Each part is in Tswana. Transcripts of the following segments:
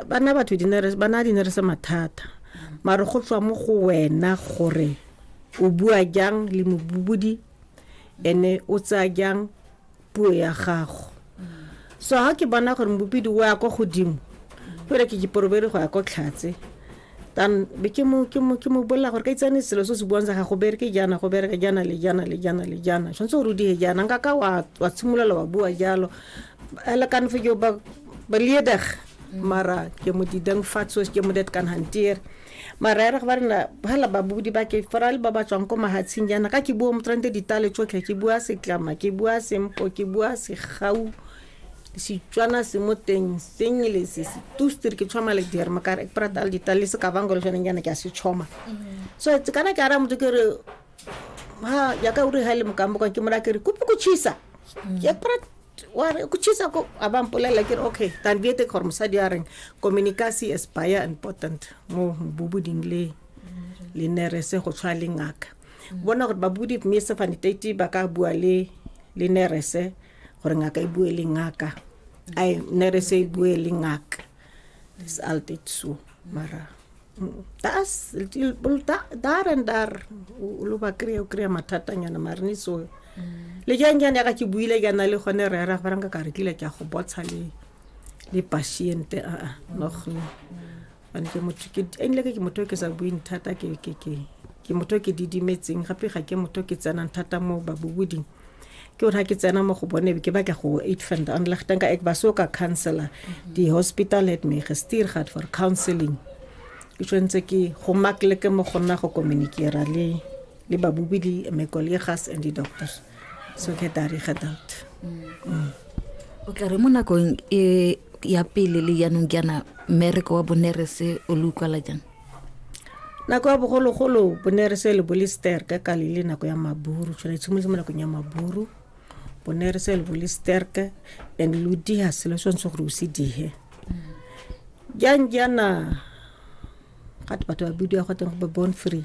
bana batho bana di ne re se mathata mare go tswa mo go wena gore o bua jang le mobubudi ene o tsaya jang puo ya gago so ga ke bona gore mobubidi o ya ko godimo fela ke ke porobere go ya ko tlhatse then be ke mo ke mo ke mo bolela gore ka itsane selo se se buang sa ga go bereke jana go bereka jana le jana le jana le jana tshwanetse gore o die jana nka ka wa wa tshimolola wa bua jalo ele kan fe jo ba ba lieder mm. mara ke mo di dang fatso ke mo det kan hantier mara era ba rena hala ba budi ba ke fora le ba ba tswang ko mahatshing jana ka ke bua mo trente ditale tsotlhe ke bua setlama ke bua sempo ke bua segau Setswana se mo teng sengle se se tusti re ke tshoma le diere mo kare ke prata le dita le se ka bango le jone nyana ke a se tshoma mm. so tse kana ke ara motho ke re ha ya ka uri ha le mokambo kwa ke mora ke re kupi ku chisa mm. ke prata wa re ku chisa ko a ba mpolela ke re okay tan bi ete gore mosadi a reng communication is by important mo bubu ding le mm. le nere se go tshwa le ngaka bona gore ba budi mme se fanitati ba ka bua le le nere se gore ngaka e bue le ngaka ai nerese e bue le ngaka dis altyd so mara das dar and dar o lo ba kry-e o kry-a mathatanyana marene so mm. le jang jane yaka ke buile ke na le gone re ra farang ka ka re tlile ke a go botsha le le patiente aa ah, ah, nogne ane ke motho ke enile ke motho ke sa buing thata ke ke ke ke motho ke didimetseng gape ga ke motho ke tsenang thata mo baboboding ke gore ga ke tsena mo go bone ke ba ke go eight fund an le gtenka ek ba so ka counselor di hospital het me gestuur gehad vir counseling ke tshwanetse ke go makleke mo go nna go communicera le le babobedi my colleagues and the doctors so ke tari ga doubt o tla re mo nakong e ya pele le yanong jaana mmereko wa bonerese o le utlwala jang nako ya bogologolo bonerese le bolister ka kale le nako ya maburu tshwana tshimolotse mo nakong ya maburu bonerese le bolisterke and lo diha selo se ntse gore o se dihe jang jaana gate batho ba bidiwa go teng go be born free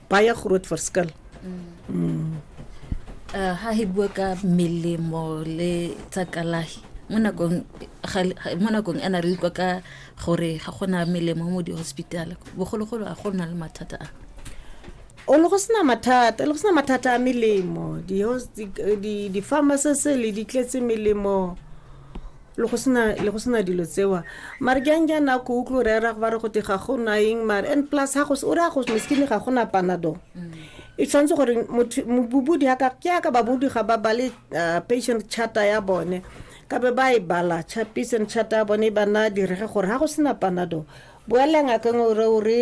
baie groot verskil. Mm. Mm. Uh, ha hi bua ka melemo le tsa kalahi mo nakong mo nakong e na re utlwa ka gore ga gona melemo mo di-hospital bogologolo a go na le mathata a o le go sena mathata le go sena mathata a melemo di-pharmacies le di tletse melemo le go sena le go sena dilo tsewa mare ke anke a nako o tlo rera go ba re go te ga go na eng mare and plus ga go o re a go meskine ga go na panado e tshwanetse gore bobudi ka ke aka babudi ga ba bale uh, patient charter ya bone ka be ba e bala patient charter ya bone e ba na direge gore ga go sena panado boela ngakeng ore ore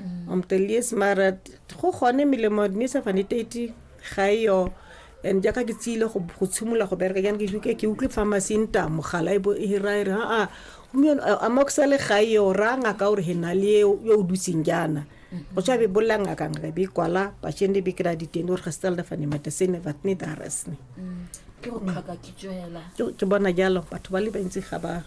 mm. um the least mara go gone melemo ne sa fane tati ga e yo and jaaka ke tsile go tshimolola go bereka jane ke ke utlwe pharmacy nta mogala e bo e hira e re aa gompieno amoxa le ga eo ra ngaka gore he na le yo o dutseng jaana mm-hmm. go tswa be bolela ngaka ngaka be kwala bashende be kry-a diteng gore ga se tsalda fane matesene but ne daresne mm. ke bona jalo batho ba le bantsi ga ba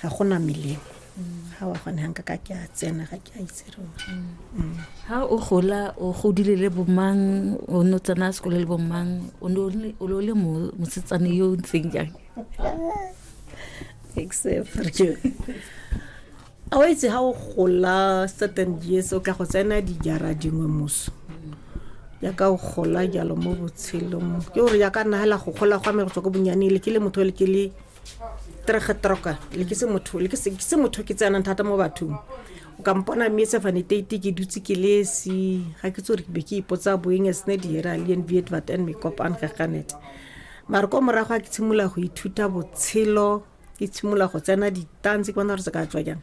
ga go na melemo ga wa gone ga nka ka ke a tsena ga ke a itse rona ha o gola o godile le bomang o ne o tsena sekolo le bomang o ne o le- o ne o le mo- mosetsane yo o ntseng jang except a o itse ga o gola certain years o ka go tsena dijara dingwe moso yaka o gola jalo mo botshelong ke gore yaka nagela go gola gwa me go tswa ko bonyanele ke le motho le ke le trege troka le ke se motho le ke se ke se motho ke tsenang thata mo bathong o ka mpona mme se fane tete ke dutse ke lesi ga ke tsore ke be ke ipotsa boeng as ne di era le nviet vat and me kop an gaganet mara ko morago a ke tshimula go ithuta botshelo ke tshimula go tsena ditanse ke bona re se ka tswa jang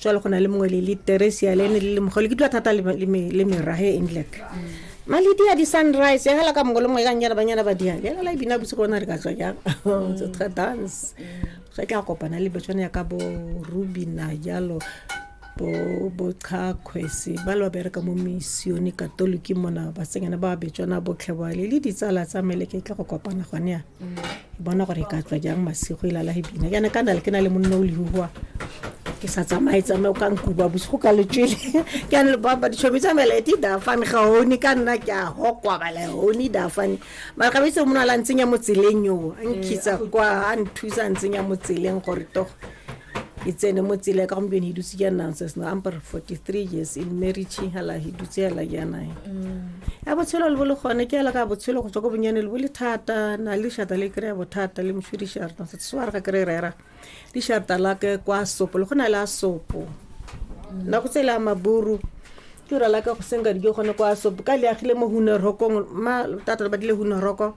jalo go na le mongwe le le teresia le ne le le mogolo ke dula thata le le me- le merage e england malidia di sunrise ya gala ka mongwe le mongwe e kang jana banyana ba diang ya gala e bina bosigo ona re ka tswa jang So, tra dance ge tla kopana le betsone ya ka bo rubina jalo bo bo chakgwese ba le ba bereka mo missione katoliki mona basenyana ba betswana botlhebale le ditsala tsa meleke e tla go kopana gone yana bona gore e ka tswa jang masigo e lala e bina jaana ka na le ke na le monna o lehugoa ke sa tsamaye tsamaye o ka nkuba bosigo ka letswele ke ane lebaba ditšhomi tsa mela ete dafane ga one ka nna ke a hokwa bala one dafane mara ga bese mona la ntsenya mo tseleng yo a nkitsa kwa a nthusa a ntsenya mo tseleng gore togo e tsene mo tsela ka gompieno e dutse jaana nonsense no amper 43 years in marriage hala e dutse hala jaana e ya botshelo le bo le gone ke ela ka botshelo go tswa ko bonyane le bo le thata na le shata le kry-a bothata le moswi disharta se se wa re ga kry rera disharta la ke kwa sopo le go na le a sopo nako tse le a maburu ke ura la ka go senka dijo gone kwa sopo ka le agile mo hunerokong ma tata le badile huneroko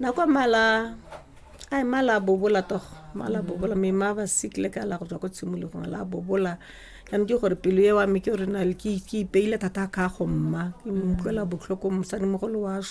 nako mala a mala a bobola togo mala a bobola mme ma ba sick le ka la go tswa ko tshimologong la bobola jaanong ke gore pelo e wa me ke gore na ke ipeile thata ka go mma ke utlwela botlhoko mosadi mogolo wa so